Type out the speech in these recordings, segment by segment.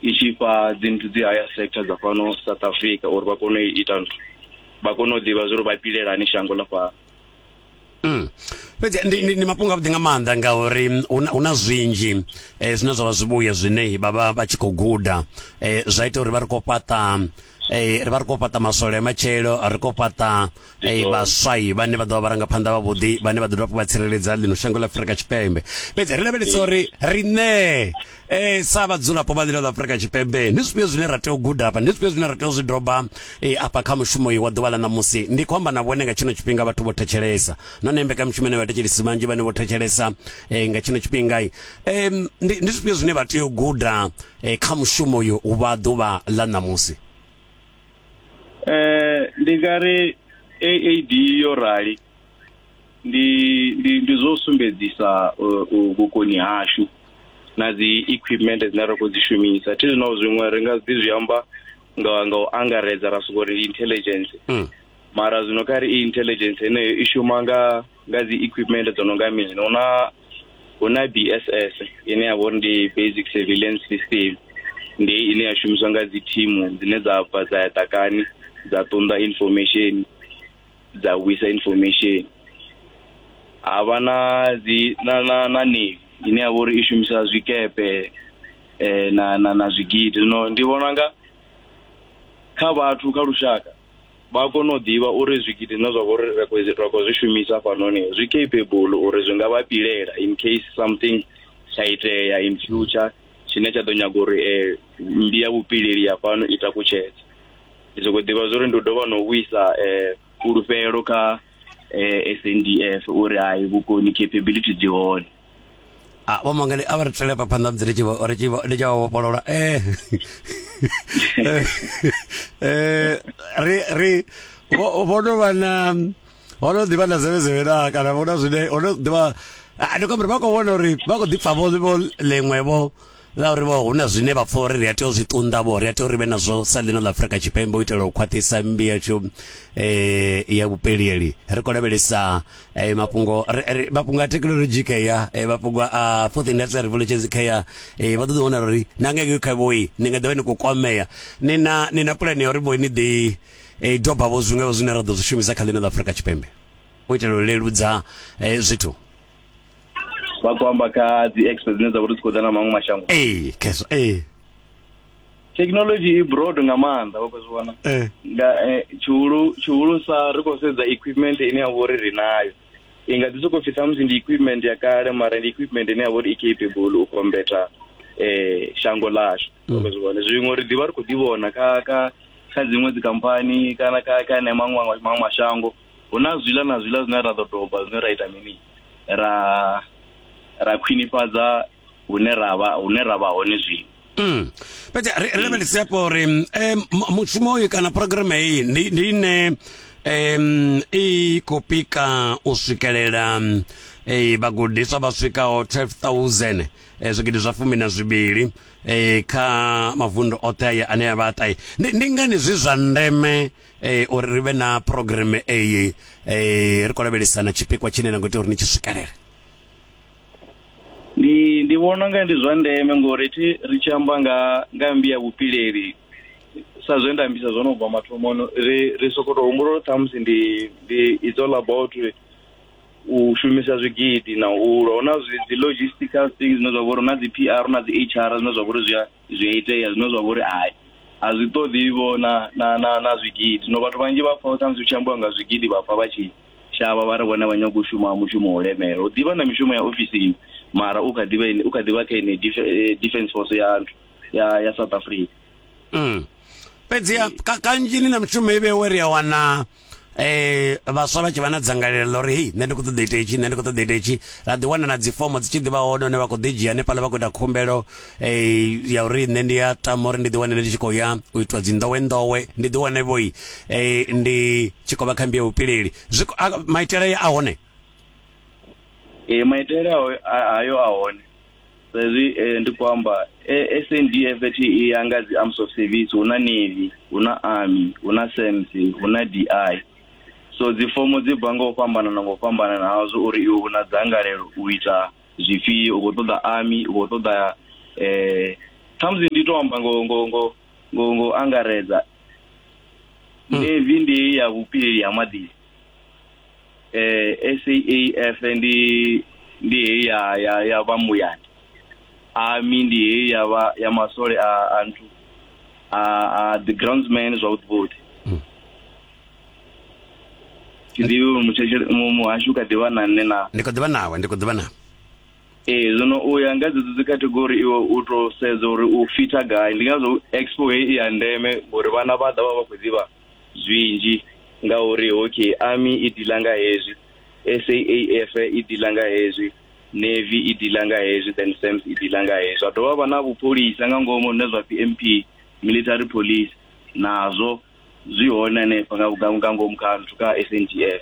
i tshi fha dzi nthu dzi higher sector dza fhano south africa uri vha kone u ita nthu vha kone u ḓivha zwori vha pilelani shango ḽa fhano Mm. fhedzi ndi, ndi, ndi mafhungo avhuḓi nga maanḓa ngauri mm, hu na- hu na zwinzhi eh, zwine zwa vha zwivhuya zwine vha vha vha tshi khou guda eh, zwa ita uri vha ri khou fhaṱa eh, ri vha ri khou fhaṱa maswole a matshelo ri khou fhaṱa Hey, vhaswai vhane vha ḓovha vharangaphanḓa vhavhuḓi vhane vha ḓo dovha vha tsireledza ḽino shango ḽa afurika tshipembe fhedzi ri lavhelesa uri riṋe um sa vhadzulapo vha ḽino ḽa afurika tshipembe ndi zwifhio zwine ra tea u guda afha ndi zwifhio zwine ra tea u zwi doba eh, afha kha mushumo wa ḓuvha ḽa ṋamusi ndi khou amba na vhone nga tshino tshifhinga vhathu vho thetshelesa nahone mbekanyamushumo ine vhathetshelesi vhanzhi vhane vho thetshelesa eh, nga tshino tshifhinga um ndi zwifhio zwine vha tea u guda kha mushumo uyu wa ḓuvha ḽa ṋamusi eh ndi nga ri AAD yo rali ndi ndi ndi zwo sumbedzisa uh, uh, vhukoni hashu na dzi equipment dzine ra khou dzi shumisa thi zwino zwiṅwe ri nga ḓi zwi amba nga nga u angaredza ra sokou ri intelligence Mm. mara zwino kha ri i intelligence heneyo i shuma nga nga dzi equipment dzo no nga mini hu na hu na bss ine ya vha uri ndi basic surveillance system ndi hei ine ya shumiswa nga dzi thimu dzine dza bva dza ya ḓakani dza ṱunḓa information dza vhuisa information ha vha na dzi na na na navy ine ya vha uri i shumisa zwikepe um na na na zwigidi zwino ndi vhona nga kha vhathu kha lushaka vha a kona u ḓivha uri zwigidi zwine zwa vha uri ri khou ri khou zwi shumisa hafhanoni zwi capable uri zwi nga vha pilela in case something tsha itea in future tshine tsha ḓo nyaga uri um mmbi ya vhupileli ya fhano i takutshedze ndi sokou ḓivha zwa uri ndi u dovha na u vhuisa um fhulufhelo kha um s n d f uri hai vhukoni capability dzi hone Ah, vhoma ngani a vha ri tshele pa phanḓa musi ri tshi vho- ri tshi vho- ndi tshi vha vhofholola eh Eh, eh ri ri vho vho no vha na ho no ḓivha na zevezeve na kana vho na zwine ho no ḓivha Ah, ndi khou amba uri vha khou vhona uri vha khou ḓi pfa vho vho ḽiṅwe vho Ngauri vho hu na zwine vha pfa uri ri a tea u zwi ṱunḓa vho ri a tea uri vhe nazwo sa ḽino ḽa Afrika Tshipembe u itela u khwaṱhisa mmbi yashu eh ya vhupelieli ri khou lavhelesa eh mafhungo mafhungo a thekinoḽodzhi kha ya eh, mafhungo a fourth industrial revolution kha ya eh vha ṱoḓa vhona uri na ngeke kha vhoi ni nga ḓovha ni khou kwamea ni na ni na pulani ya uri vhoi ni ḓi eh doba vho zwiṅwe zwine ra ḓo zwi shumisa kha ḽino ḽa Afrika Tshipembe u itela u leludza eh zwithu vha khou amba kha dzi expo dzine dza vha uri dzi khou ḓa na maṅwe mashango ee khezwo ee thekhinolodzhi i broad nga maanḓa vha khou zwi vhona eh. nga eh, tshihulu tshihulusa ri khou sedza equipment ine ya vha uri ri nayo i nga ḓi sokou pfhi samusi ndi equipment ya kale mara ndi equipment ine ya vha uri i capable u kombeta eh shango lashu mm. vha zwi vhona zwiṅwe ri ḓivha ri khou ḓi vhona kha kha kha dziṅwe dzikhamphani kana kha kha ene maṅwe maṅwe mashango hu na zwiḽa na zwiḽa zwine ra ḓo doba zwine ra ita mini ra ra khwinifhadza hune ra vha hune ra vha hone zwino Mm. Fhedzi ri ri lavhelese hafho uri eh, mu- mushumo uyu kana program heyi ndi ndi ine em i khou pika u swikelela eh vhagudiswa vha swikaho 12000 eh, zwigidi zwa fumi na zwivhili eh, kha mavundu oṱhe aya ane a vha ṱahe ndi ndi ngani zwi zwa ndeme eh uri ri vhe na program eyi eh ri khou lavhelesa na tshipikwa tshine na ngo tea uri ni tshi swikelele ndi ndi vhona nga ndi zwa ndeme ngori thi ri tshi amba nga nga mbi ya vhupileli sa zwe nda ambisa zwo no bva mathomoni ri ri soko to humbula uri ṱhamusi ndi ndi it's all about u shumisa zwigidi na u lwa hu na zwi- dzi logistical things zwine zwa vha uri hu na dzi p r hu na dzi h r zwine zwa vha uri zwi a zwi a itea zwine zwa vha uri hai a zwi ṱoḓi vho na na na na zwigidi zwino vhathu vhanzhi vha pfa khamusi hu tshi ambiwa nga zwigidi vha pfa vha tshi shavha vha ri vhone vha nyaga u shuma mushumo wo lemela u ḓivha na mishumo ya ofisini mara u kha ḓivha ene- u kha ḓivha kha ene dif- eh, defence force ya nthu ya ya south africa Mm. fhedziha ka- kanzhi ni na mishumo i vhewe ri a wana eh vhaswa vha tshi vha na dzangalelo ḽa uri hei nṋe ndi khou ṱoḓa ita itshi nṋe ndi khou ṱoḓa ita itshi ra ḓi wana na dzifomo dzi tshi ḓi vha hone hune vha khou ḓi dzhia hanefhaḽa vha khou ita khumbelo eh ya uri nṋe ndi ya tama uri ndi ḓi wane ndi tshi khou ya u itwa dzi ndowe ndowe ndi ḓi wane vhoi eh ndi tshi khou vha kha mbiya vhupileli zwi maitele a hone ee maitele ayo a hone sa izwi eh, ndi khou amba eh, sndf thi i ya nga dzi arms of service hu na navy hu na army hu na sams hu na di so dzifomo dzi bva nga u fhambanana nga u fhambanana hazwo uri iwe u na dzangalelo u ita zwifhio u khou ṱoḓa army u khou ṱoḓa eh khamusi ndi to amba ngo ngo ngo ngo ngo angaredza navy ndi ya vhupileli ha maḓini eh SAAF ndi ndi heyi ya ya ya vha muyani army ndi heyi ya vha ya masole a a nthu a a the groundsman zwavhuḓi vhuḓi thi ḓivhi uri mutshetshe- mu- muhasho u kha ḓivha na nṋe na ndi khou ḓivha nawe ndi khou ḓivha nawe ee zwino u ya nga dzedzo dzi category iwe u to sedza uri u fita gai ndi ngazwo expo heyi i ya ndeme ngori vhana vha ḓa vha vha khou ḓivha zwinzhi ngauri hockey army i dila nga hezwi SAAF i dila nga hezwi navy i dila nga hezwi then SAMS i dila nga hezwi zwa dovha vha na vhupholisa nga ngomu zwine zwa pfi MP military police nazwo zwi hone hanefha nga nga ngomu kha nthu kha SANDF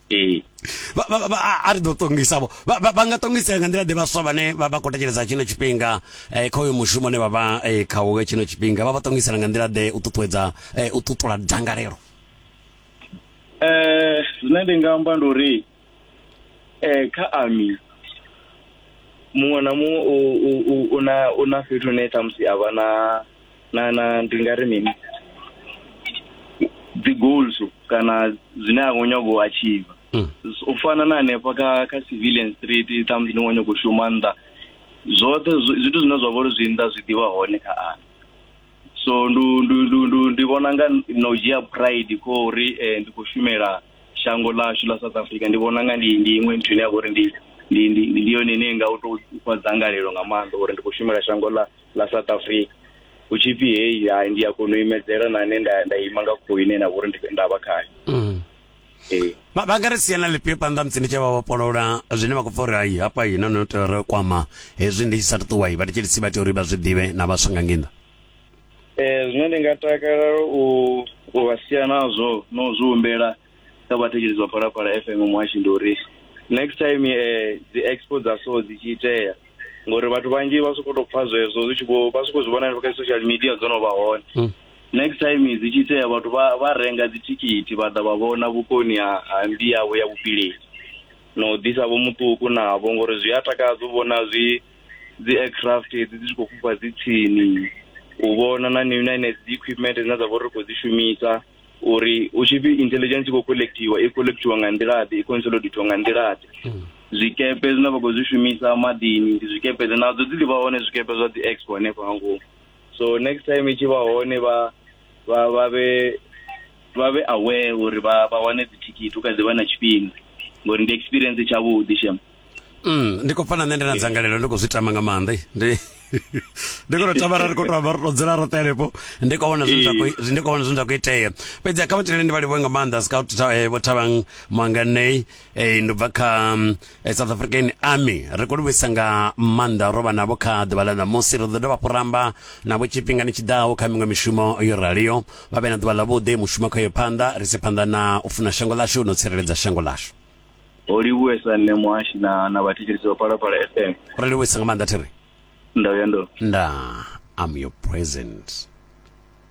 ee vha vha- vha- a- a ri ḓo ṱongisa vho vha vha- vha nga ṱongisea nga nḓila ḓe vhaswa vhane vha vha khou thetshelesa tshino tshifhinga eh, kha uyo mushumo ne vha vha eh, khawo nga tshino tshifhinga vha vha ṱongisela nga nḓila ḓe u ṱuṱuwedza eh, u ṱuṱula dzangalelo eh zwine ndi nga amba ndi uri eh kha army muṅwe na muṅwe u- u- u- u na u na fhethu hune ṱhamusi a vha na na na ndi nga ri mini dzi goals kana zwine a khou nyago u achieve Mm. u fana na hanefha kha kha civilian street ṱhamusi ni khou nyago u shuma nnḓa zwoṱhe zwi- zwithu zwine zwa vha uri zwi nnḓa zwi ḓivha hone kha ana so ndu ndu ndu ndu ndi vhona nga na u dzhia pride kho uri eh, ndi khou shumela shango ḽashu ḽa south africa ndi vhona nga ndi ndi iṅwe nthu ine ya vha uri ndi ndi ndi ndi yone ine nga u tou fha dzangalelo nga maanḓa uri ndi khou shumela shango ḽa ḽa south africa hu tshi pfi heyi hai ndi a kona u imedzela na nṋe nda nda ima nga khou ine na vhori ndi- nda vha khayo Mm. ee vha vha nga ri siela lifhio phanḓa musi ndi tshi vha vhofholola zwine vha khou pfa uri hai hafha hi na no tea ri kwama hezwi ndi tshi sa ṱuwa i vha ndi tshi lisi vha tea uri vha zwi ḓivhe na vhaswa nga ngenḓa Eh, zwine ndi nga takalela u u vha sia nazwo no zwi humbela kha vhathetshelesi vha phalaphala fm muhashi ndi uri next time eh, dzi expo dza so dzi tshi itea ngori vhathu vhanzhi vha sokou tou pfa zwezwo zwi tshi vho vha sokou zwi vhona hanefha kha social media dzo no vha hone Mm. next time dzi tshi itea vhathu vha vha renga dzithikhithi vha ḓa vha vhona vhukoni ha ha mbi yavho ya vhupileli na u ḓisa vho muṱuku navho ngori zwi a takadza u vhona zwi dzi aircraft hedzi dzi tshi khou fhufha dzi tsini u vhona na ni- na henedzi dzi equipment dzine dza vha uri ri khou dzi shumisa uri hu tshi pfi intelligence khou collectiwa i collectiwa nga nḓila ḓe i consolidatiwa nga nḓila ḓe hmm. zwikepe zwine vha khou zwi shumisa maḓini ndi zwikepe ḓe nadzo dzi ḓi vha hone zwikepe zwa dzi expo hanefho nga ngomu so next time i tshi vha hone vha vha vha vhe vha vhe aware uri vha vha wane dzithikhithi u kha ḓi vha na tshifhinga ngori ndi experience tshavhuḓi shem mm, ndi khou pfa na nṋe ndi na dzangalelo ndi khou zwi tama nga maanḓa ndi ndi khou tama ra ri khou tou vha ri tou dzula roṱhe henefho ndi khou vhona zwine zwa khou- zwi- ndi khou vhona zwine zwa khou itea fhedzi kha vhathele ndi vha livhuwe nga maanḓa scout Tha- eh, vho thavhang mwanganei eh, ndo bva kha mm, eh, south african army ri khou livhuisa nga maanḓa ro vha navho kha ḓuvha ḽa ṋamusi ri ḓo dovha hafhu ramba navho tshifhingani tshi ḓaho kha miṅwe mishumo yo raliho vha vhe na ḓuvha ḽavhuḓi mushumo kha yo phanḓa ri si phanḓa na u funa shango ḽashu no tsireledza shango ḽashu ho livhuwesa nṋe muhashi na na vhathetshelesi vha phalaphala fm ri livhuwesa nga maanḓa thiri nda vhuya ndo nda am your present